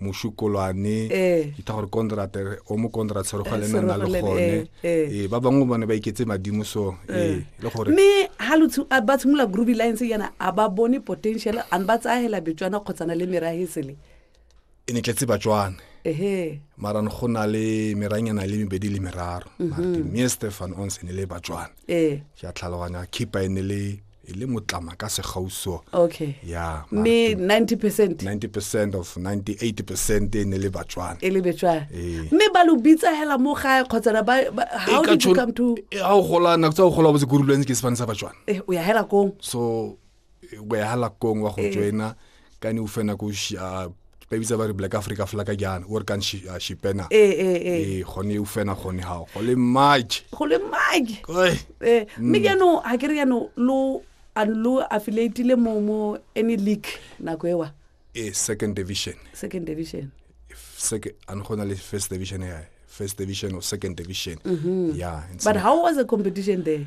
mošukolwane eh. ke tha gore contract o mo contract se re go le nna le gone eh ba bangwe bone ba iketse madimo so eh le gore me ha lo tsu ba tshimula groovy lines yana a ba bone potential an ba tsahela betswana khotsana le merahisele e ne tletse batswana ehe mara ne go na le meranyana le mebedi le meraro mhm. martin me stefan onse ne le batswana eh ke a tlhaloganya khipa e ne le e le motlama ka segauso okay ya mme 90 percent 90 percent of 98 percent e ne le batswana e le betswana Ee. mme ba lo bitsa hela mo gae kgotsa na ba ba- how did you come to ga o gola nako tsa go gola botse kurulweng ke sefane sa batswana eh o ya hela kong so o ya halakong wa go joina ka ne o fena ko ah, ba bitsa ba re black africa flaga jana o re kang ah, shipena ee eh, eh, eh. gone o fena gone gago go le mage go le mage mme jaanong ga ke re jaanong lo lo affiliatile mo mo any league nako ewa ee second division second division ane go na le first division ya first division or second division mm -hmm. yeah but how was the competition there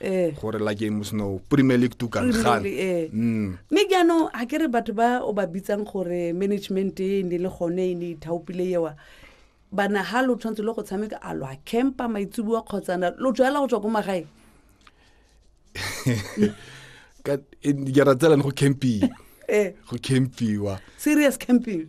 eh. gore la game o seno premier league to kan gan eh. mm. me ke ano ha ke re batho ba o ba bitsang gore management e ne le gone e ne ithaopile yewa bana ha lo tshwantse lo go tshameka a lo a campa maitsubuwa kgotsa na lo tswela go tswa ko magae ka ke ra tsela go camping eh go campiwa serious camping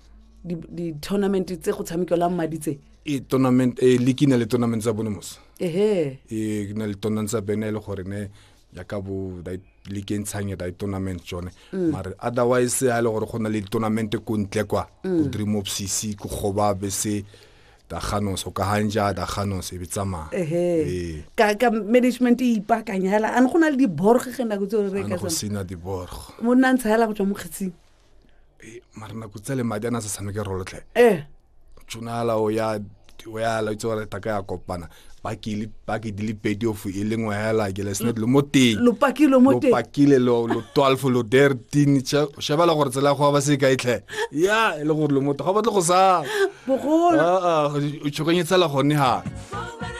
di-tournament di tse go tshamekelwang madi tse e tournament e le kina le tournament tsa bonomosa ehe e kina le tournament tsa bene e le gore ne ya ka bo da le ke ntshang ya da tournament jone mm. mare otherwise ha e le gore go na le tournament ko ntle kwa go mm. dream of cc go goba be se da ganos o ka hanja da ganos e bitsama ehe ka ka management e ipakanyela an go na le di borg ge na go tsore re ka go sina di borg mo nna ntshela go tswa mo kgetsing Eh, mara nako tsa le madi a ne a sa tshameke rolotlhe eh tshonala o ya o ya la itse gore taka ya kopana ba ke le ba ke di le pedi of e le ngwe hela ke le snet lo mo teng lo pakile mo teng lo pakile lo lo 12 lo 13 cha cha ba la gore tsela go ba se ka itlhe ya e le gore lo mo teng ga ba tle go sa bogolo a a o tshoganyetsa la gone ha